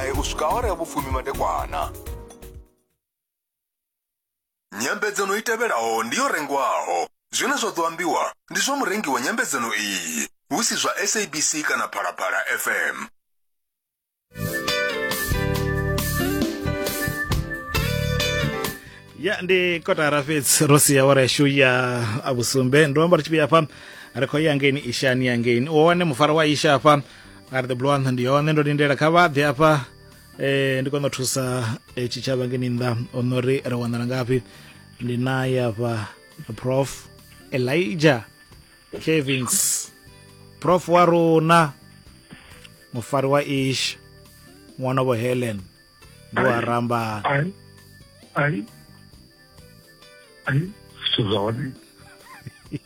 Ee, u swika awara ya vhufumi madekwana. Nyambedzano i tevhelaho ndi yo rengwaho. Zwine zwa ḓo ambiwa ndi zwa murengi wa nyambedzano iyi, hu si zwa SABC kana Phalaphala FM. ya ndi kotara fhedzi ro sia awara yashu ya vhusumbe ndo amba ri tshi vhuya hafha ri khou ya ngeini ishani ya ngeini u wane mufara wa isha hafha ngari the blue antha ndi yone ndo lindela kha vha ḓe afha eh ndi kona u thusa eh, tshitshavha ngeni nnḓa ono ri ri wanala ngafhi ndi naye afha prof elijah cavings prof wa rona mufari wa ish ṅwana vho helen ndi wa rambana ai ai ai zwithu zwa hone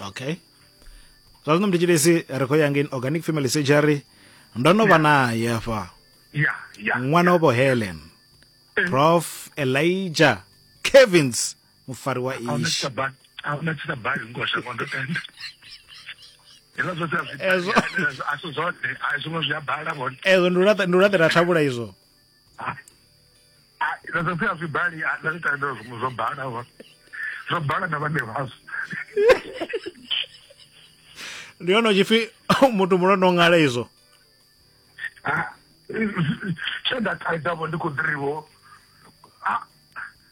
okay zwa zwino mthetshelesi ri khou ya ngei organic family surgery ndo no vha naye hafha ṅwana wavho helen eh. prof elijah kevins mufari wa ishi ahuna tshita bali ngo shango ndo tenda hezwo zwote a zwi a zwi zwote a zwi ngo zwi a bala vhone ezwo ndi u laṱela thavhula izwo ah, ah, na zwa pfhi a zwi bali ah, na zwi tandela zwiṅwe zwo bala zwo bala na vhane vhazwo ndi hone tshipfi muthu muno no ngala izwo tshe nda thaidzavho ndi khou ḓiriwo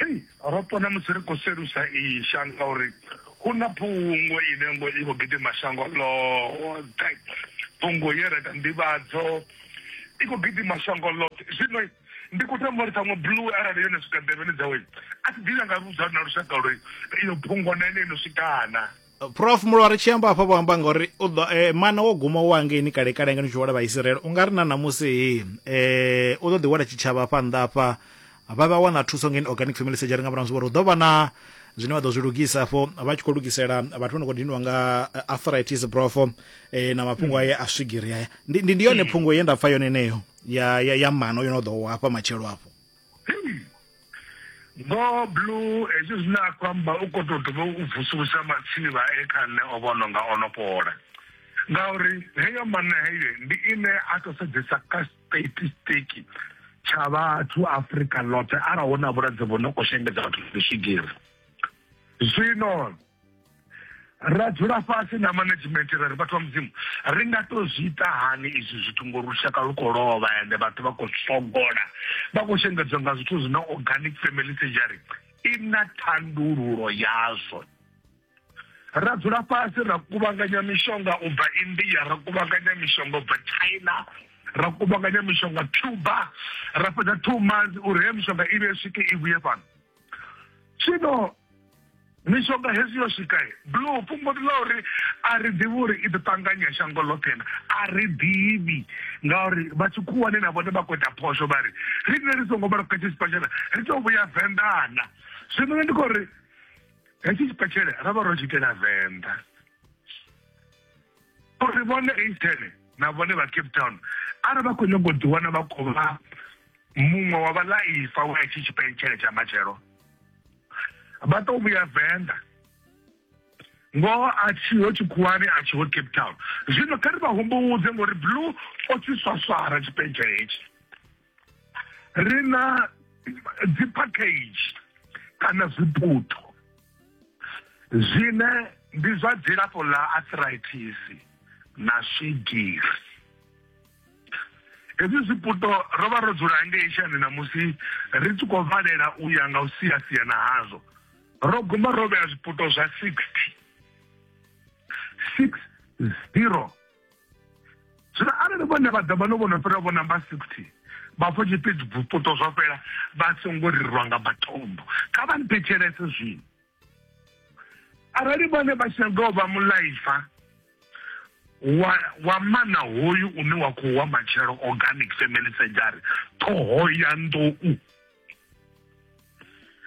Hei, ro pona musi ri khou selusa iyi shango uri hu na phungo ine ngo i khou gidima shango ḽoṱhe. Phungo ye ra ita nḓivhadzo i khou gidima shango ḽoṱhe. Zwino ndi khou tama uri ṱhaṅwe Blue arali yo no swika nḓevheni dzawe, a si ḓivhe a nga vhudza na lushaka uri iyo phungo na ene yo no swika na. prof mulwa ri tshi amba hafha vho amba ngauri u ḓo eh, mana wo guma wa ngeini kale kale ngeno tshihwala vha Israel u nga ri na namusi eh u ḓo ḓi wela tshitshavha hafha nnḓa hafha vha vha wana thuso ngeni organic family surgery nga murahu zwi vhori hu ḓo vha na zwine vha ḓo zwi lugisa afho vha tshi khou lugisela vhathu vha no khou diniwa nga eh, arthritis brofo eh, na mafhungo aye a swigiri aya ndi, ndi, ndi yone phungo ye nda pfa yone eneyo ya, ya, ya mano yo no ḓo hafha matshelo afho Vho Blue hezwi zwine a khou amba u khou tou dovha u vusulusa matsini vha e kha nṋe o vhono nga o no fhola ngauri heyo manna heyo ndi ine a tou sedzesa kha statistiki tsha vhathu Afrika ḽoṱhe arali hu na vhulwadze vhu no khou shengedza vhathu ndi swigiri zwino ra dzula fhasi na management ra ri vhathu vha mudzimu ri nga to zwi ita hani izwi zwithu ngori lushaka lu khou lovha ende vhathu vha khou sogola vha khou shengedzwa nga zwithu zwine organic family surgery i na thandululo yazwo ra dzula fhasi ra kuvhanganya mishonga u bva india ra kuvhanganya mishonga u bva china ra kuvhanganya mishonga cuba ra fhedza two months uri he mishonga i vhe swike i vhuye fhano zwino mishonga hezwi yo swika blue fhungo ndi ḽa uri a ri ḓivhi uri i ḓo ṱanganya shango ḽoṱhe na a ri ḓivhi ngauri vha tshikhuwani na vhone vha khou ita phosho vha ri ri ne ri songo vhala kha tshi sipatshela ri tou vhuya venḓana zwino nṋe ndi khou ri hetshi tshipatshele ra vha ro tshi itela venḓa uri vhone Eastern na vhone vha Cape Town arali vha khou nyanga u ḓiwana vha khou vha muṅwe wa vhalaifa wa itshi tshipentshele tsha matshelo vha tou vhuya venḓa ngoho a tshiho tshikhuwani a tshiho cape town zwino kha ri vha humbudze ngori blue o tshi swaswara tshipentshele hetshi ri na dzi package kana zwiputo zwine ndi zwa dzilafho ḽa arthritis na swigiri hezwi zwiputo ro vha ro dzula ngei shani na musi ri tshi khou valela u ya nga u sia sia na hazwo ro guma ro vhea zwiputo zwa 60 6 0 zwino arali vhone vha ḓa vha no vhono fhira vho namba 60 vhafho tshipidi bvupoto zwa fhela vha songo rirwa nga matombo kha vha nthetshelese zwino arali vhone vha tshinyaga u vha mulaifa wa wa mana hoyu une wa khou wa matshelo organic family surgery ṱhoho ya nḓou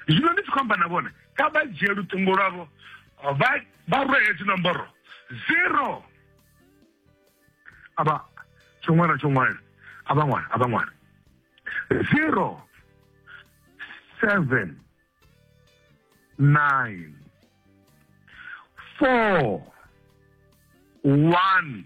zwino ndi tshi khou amba na vhone kha vha dzhie luṱingo lwavho vha vha rwe hedzi nomboro zero avha tsho ṅwana tsho ṅwana avha ṅwana avha ṅwana zero seven nine four one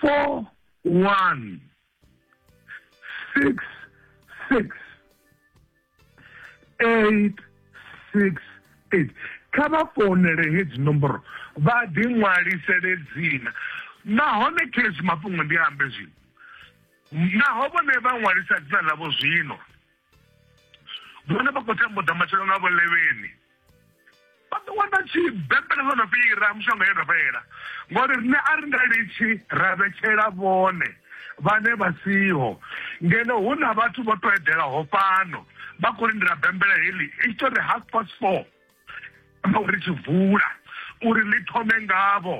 four one six six eight six eight kha vha founele hedzi nomboro vha ḓi ṅwalisele dzina nahone khezwi mafhungo ndi ambe zwino naho vhone vha ṅwalisa dzina ḽavho zwino vhone vha khou tambuda matshelo nga vhulevheni vha ḓo wana tshi bembele ḽo no fhira mushonga yo no fhela ngori riṋe a ri nga litshi ra vhetshela vhone vhane vha siho ngeno hu na vhathu vho to edelaho fhano vha khou lindela bembele heḽi i tshi to ri half past four uri tshi vula uri ḽi thome ngavho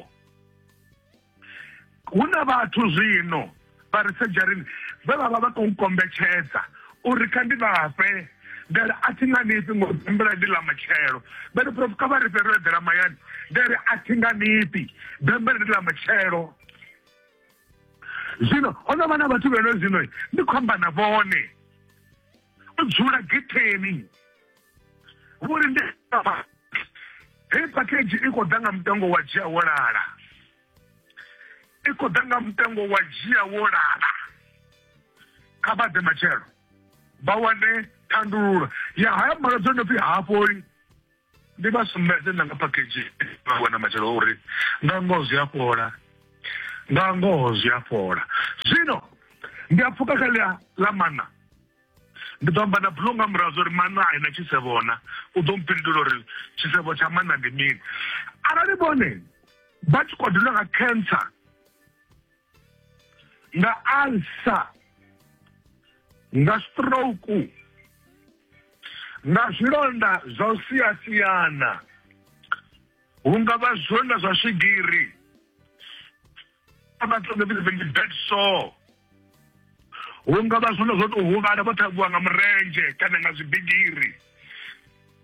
hu na vhathu zwino vha ri sedzharini vhe vha vha vha khou kombetshedza uri kha ndi vhafhe ndari a thi nga nifhi ngo bembela ndi ḽa matshelo vha ri prof kha vha ri fhelo eḓela mayani ndari a thi nga nifhi bembela ndi ḽa matshelo zwino ho no vha na vhathu vheno zwino ndi khou amba na vhone o dzula getheni vhori ndi hei package i khou ḓa nga mutengo wa dzhia wo lala i khou ḓa nga mutengo wa dzhia wo lala kha vha ḓe matshelo vha wane thandululo ya haya malwadze o no pfi hafholi ndi vha sumbedze na nga package vha wana matshelo uri nga ngoho zwi a fhola nga ngoho zwi a fhola zwino ndi a pfuka kha ḽa ḽa mana ndi ḓo amba na bulo nga murahu zwa uri mana a ina tshisevhona u ḓo mpindula uri tshisevho tsha mana ndi mini arali vhone vha tshi khou dula nga cancer nga alsa nga stroke nga zwilonda zwa u siyasiyana hu nga vha zwilonda zwa swigiri vhathu nga vhidza vhengi bed sore hu nga vha zwilonda zwo tou huvhala vho ṱhavhiwa nga murendzhe kana nga zwibigiri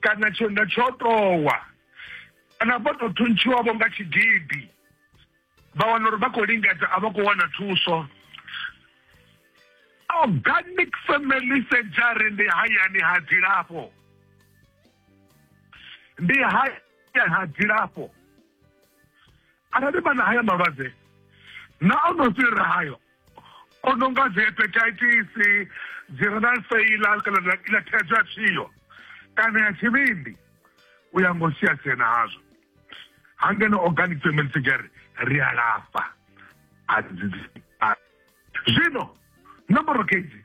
kana tshilonda tsho towa kana vho tou thuntshiwavho nga tshigidi vha wana uri vha khou lingedza a vha khou wana thuso organic family surgery ndi hayani ha dzilafho ndi hayani ha dzilafho arali vha na haya malwadze na o no fhirira hayo o no nga dzi hepatitis dzi renal failure kana ḽa ḽa thaidzo ya tshio kana ya tshivhindi u ya ngo sia sia nazwo ha ngeno organic family surgery ri a lafha a dzi a- zwino nomboro kedzi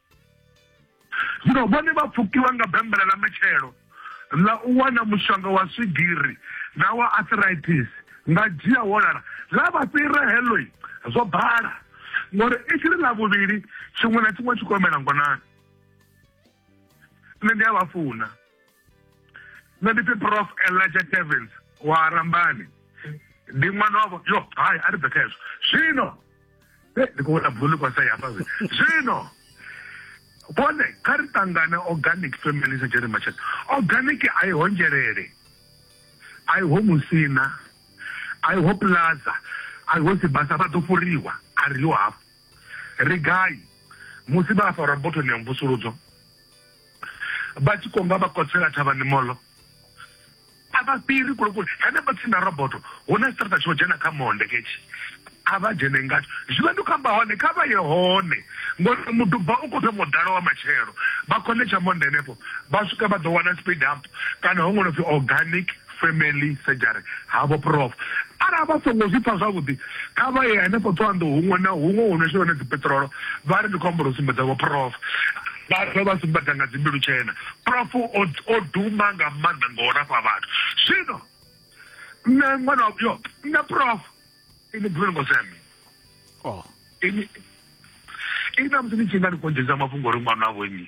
Zwino vhone vha pfukiwa nga bembela ḽa matshelo ḽa u wana mushonga wa swigiri na wa arthritis nga dzhia wo lala, ḽa vha fhira heḽo zwo bala, ngauri i tshi ri ḽa vhuvhili tshiṅwe na tshiṅwe tshi khou humela ngonani. Nṋe ndi a vha funa. nṋe ndi pfi prof elijah tevens wa rambani ndi ṅwana wavho yo hai a ri bve kha hezwo zwino eh, ndi khou vhona bulu kwasa yafha zwino vhone kha ri ṱangane organic family sa jerry machet organic a i ho nzhelele a i ho musina a i ho plaza a i ho sibasa vha ḓo fhuriwa a ri yo hafho ri gai musi vha farwa botoni ya mvusuludzo vha tshi konga vha kotsela thavhani molo a vha fhiri kule kule henefho tsini na roboto hu na tshiṱaraṱa tsho dzhena kha monde ketshi a vha dzhene ngatsho zwivha ndi khou amba hone kha vha ye hone ngori muduba u khou thoma u ḓala wa matshelo vha khonetsha monde henefho vha swika vha ḓo wana speed up kana ho ṅwalopfi organic family surgery havho prof arali vha songo zwi pfa zwavhuḓi kha vha ye hanefho ṱhoanḓou huṅwe na huṅwe hu no shela hone dzipeṱirolo vha ri ndi khou amba uri sumbedza vho prof vha dovha vha sumbedza nga dzimbilu tshena prof o duma nga maanḓa nga u lafha vhathu zwino nṋe ṅwana yo nṋe prof ini buleni ngo seme oh. ini ini na musi ni tshi nga ni konjeza mafhungo uri ṅwana wavho nnyi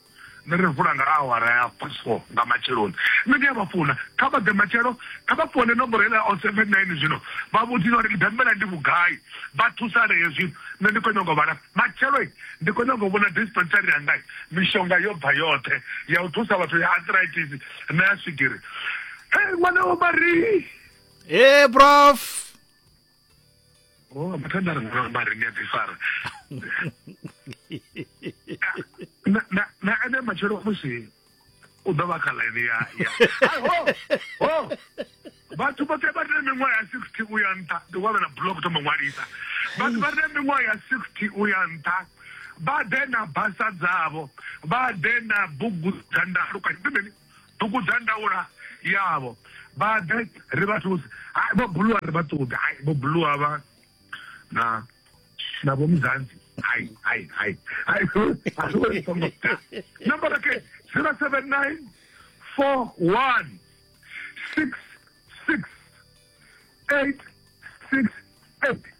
Nṋe ri vula nga awara ya past four nga matsheloni. Nṋe ndi a vha funa. Kha vha ḓe matshelo. Kha vha foune nomboro heiḽa ya 079 zwino vha vhudzise uri Mbembela ndi vhugai, vha thusalee zwino. Nṋe ndi khou nyanga u vha lafha. Matshelo, ndi khou nyanga u vhona dispensary yanga. Mishonga yo bva yoṱhe ya u thusa vhathu ya arthritis na ya swigiri. Hee ṅwana wa Marie! Hee prof! oh mathanda ri ngona mari ndi a ḓifara na ene matshelo musi u ḓo vha kha ḽaini ya vhathu vhoṱhe vha re na miṅwaha ya sixty u ya nṱha ndi wa vha na blog thoma ṅwalisa vhathu vha re na miṅwaha ya sixty u ya nṱha vha ḓe na basa dzavho vha ḓe na bugu dza ndalukanyo bugu dza ndaula yavho vha ḓe ri vha thuse hai vho buluwa ri vha ṱuḓe hai vho buluwa vha na na vho muzanzi hai hai hai hai a zwi vhoni songo ḓa number okay 079 41 66 868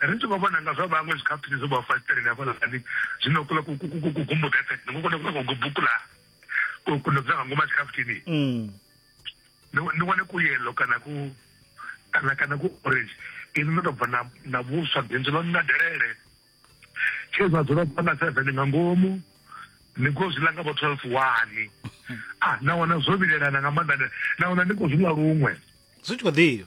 ri tshi khou vhona nga zwa vhaṅwe zwikhafuthini zwo vha fasiteleni hafhaḽani zwino kula kugumbudza efe ni kona kula kugubukula kuno dzula nga ngomu a tshikhafuthini mm. ni wane ku yellow kana ku kana kana ku orange ini no tou bva na vhuswa bindu ḽo na delele tshe zwa dzula bva na seven nga ngomu ni khou zwi ḽa nga vho twelve wani a ah, na wana zwo vhilelana nga maanḓa na wana ni khou zwi ḽa luṅwe zwi tshi khou ḓivha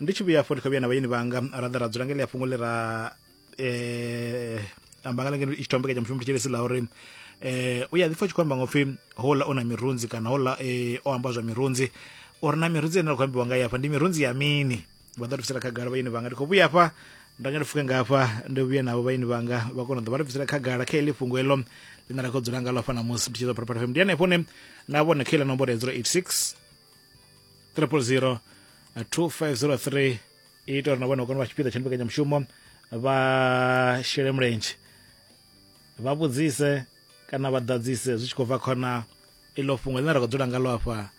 ndi tshi vhuya afho ndi khou vhuya na vhayeni vhanga ra ḓa ra dzula nga ḽia fhungo ḽi ra eh amba nga lengeno i tshi tombekanya mushumo tshitshilisi ḽa uri eh u ya ḓi pfa tshi khou amba nga upfi hola o na mirunzi kana hola eh o amba zwa mirunzi uri na mirunzi ine ra khou ambiwa nga ya hafha ndi mirunzi ya mini vha ḓo ri khagala vhayeni vhanga ndi khou vhuya hafha nda nga ndi fuke nga hafha ndi vhuye navho vhayeni vhanga vha kona u ḓo vha ri bvisela khagala kha heḽi fhungo heḽo ḽine ra khou dzula ngalo hafha ṋamusi ndi tshi ḓo pharapara fm ndi hanefho ne na vhone kha iḽa nomboro ya 086 triple zero 2503 ita uri na vhone u kone u vha tshipiḓa tsha mbekanyamushumo vha shele mulenzhe vha vhudzise kana vha ḓadzise zwi tshi khou bva khona iḽo fhungo ḽine ra khou dzula ngalo afha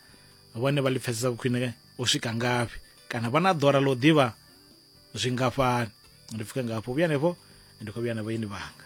vhone vha ḽi pfesesa khwine u swika ngafhi kana vha na ḓora ḽa u ḓivha zwingafhani ndi pfuke ngafho vhuya henefho ndi khou vhuya na vhaeni vhanga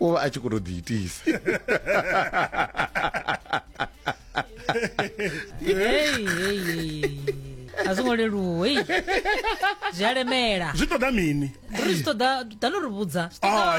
u vha a tshi khou tou ḓiitisa a zwo ngo leluwa hei zwi a lemela zwi ṱoḓa mini ri zwi ṱoḓa dano ri vhudza ah, ah,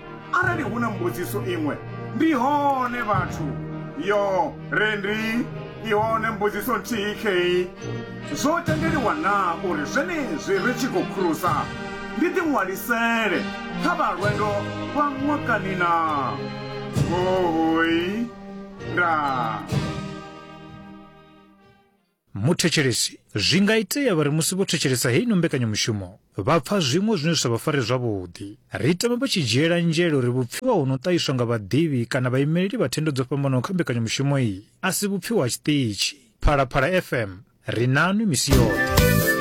Arali hu na mbudziso iṅwe, ndi hone vhathu. Yo, re ndi i hone mbudziso nthihi khei. Zwo tendeliwa naa uri zwenezwi ri tshi khou khurusa ndi ḓiṅwalisele kha vha lwendo lwa ṅwakani naa? Hohoi. Ndaa. Muthetshelesi. Zwi nga itea vha ri musi vho thetshelesa heino mbekanyamushumo vha pfa zwiṅwe zwine zwi sa vha fare zwavhuḓi. Ri tama vha tshi dzhiela nzhele uri vhupfiwa ho no ṱahiswa nga vhaḓivhi kana vhaimeleli vha thendo dzo fhambanaho kha mbekanyamushumo iyi a si vhupfiwa ha tshiṱitshi Phalaphala FM. Ri nanwi misi yoṱhe.